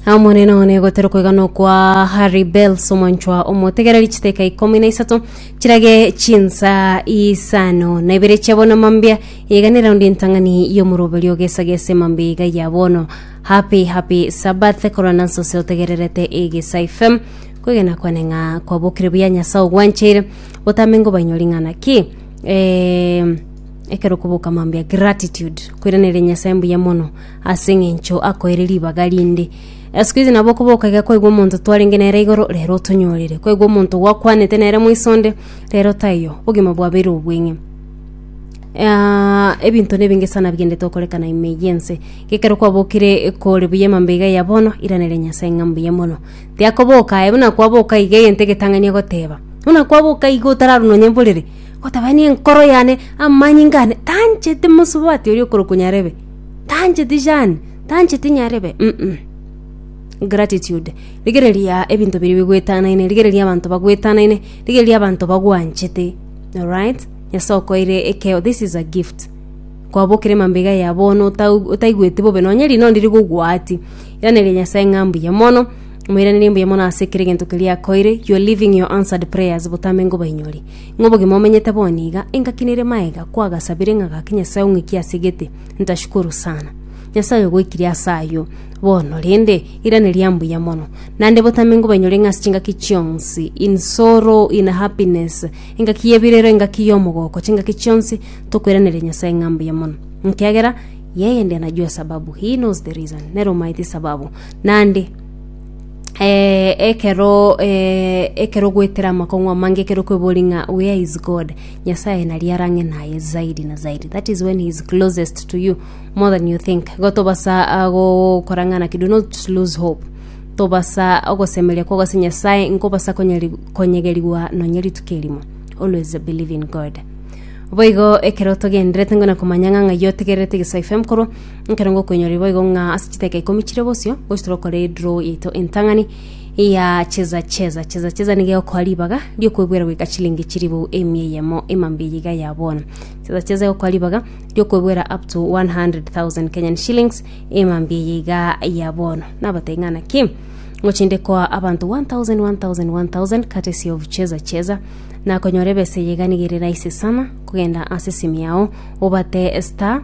Amonene one gotera kwegana okwa Harry Bells omonchwa omotegereri chiteka ikomi na isato chirage chinsa isano na ibere chia bono mambia igane raundi ntang'ani y'omoroberi ogesagese mambia iga ya bono happy happy sabath korwa nanso ose otegererete egesa ifem kwegena kwane ng'a kwabokire buya nyasaye ogwancheire botambe ngo bainyori ng'ana ki eh, ekero koboka mambia gratitude kwiranire nyasaye mbuya mono ase engencho akoeire ribaga rinde. Esiko eria nabo okoboka iga kwaigwa omonto twarenge nere igoro, rero otonyorire. Kwaigwa omonto gwakwanete nere moiso onde, rero taiyo, obogima bwabeire obweng'e. ebinto na ebinge sana bigenderete gokorekana ime eyio ense. Iga ekero kwabokire kore buya emambe iga ya bono, iraneria Nyasae ng'a mbuya mono. Tiakoboka aye, buna kwaboka iga egento egetang'ani egoteba. Buna kwaboka iga otararwa nonya mborere, ogoteba aye nenkoro yane, amanyinga ane, tanchete mosubati oria okorokwa Nyarebe. tancheti Jane, tancheti nyarebe, in'u. Gratitude, rigereria ebinto biria bigwetanaine, rigereria abanto bagwetanaine, rigereria abanto bagwanchete. Alright? Nyasae okoeire ekeo, this is a gift. Kwabokire mambega ya bono otau- otaigweti bobe, nonye rinondi rigogwati. Iraneria Nyasae ng'a mbuya mono, moiranerie mbuya mono ase ekero egento keria akoeire, you are living your answered prayers botambe ngobainyori. Ng'a obogima omenyete bono iga, engaki nere maega kwagasabire ng'a gaki Nyasae ong'ikie ase egete. Ntashukuru sana. Nyasae ogoikirie ase ayio. Bono rende, irane ria mbuya mono. Naende botambe nkobainyore ng'a ase chingaki chionsi, in sorrow, in happiness, engaki y'ebirero, engaki y'omogoko, chingaki chionsi, tokoiraneria Nyasae ng'a mbuya mono. Ekiagera yeye ndiye anajua sababu, he knows the reason, nere omaete esababu. Naende, eh, ekero eh, ekero gwetera amakong'u amange ekero kwebori ng'a where is god nyasaye nari arang'e naye zaidi na zaidi that is when he is closest to you more than you think igo tobasa ah, gokora ng'ana ki do not lose hope tobasa ogosemeria kwa gose nyasaye nkobasa konyeri- konyegerigwa nonye rituko erimo always believe in god boigo ekero togenderete ngona komanya ng'a ng'ai otegererete geso fm korwa Ekero ngokoinyorire boigo ng'a ase chidaka ikomi chire bosio gochia tore gokora edraw yaito entang'ani ya cheza cheza cheza cheza niga egokoa ribaga riokwebwera goika chilingi chiribu emia eyemo emambia eye iga ya bono cheza cheza egokoa ribaga riokwebwera up to 100,000 Kenyan shillings emambia eye iga ya bono nabatebia ng'a naki ngochinde koa abanto 1000 1000 1000 courtesy of cheza cheza nakonyora ebesa eye iga niga ere rahisi sana kogenda ase esimi yao obate star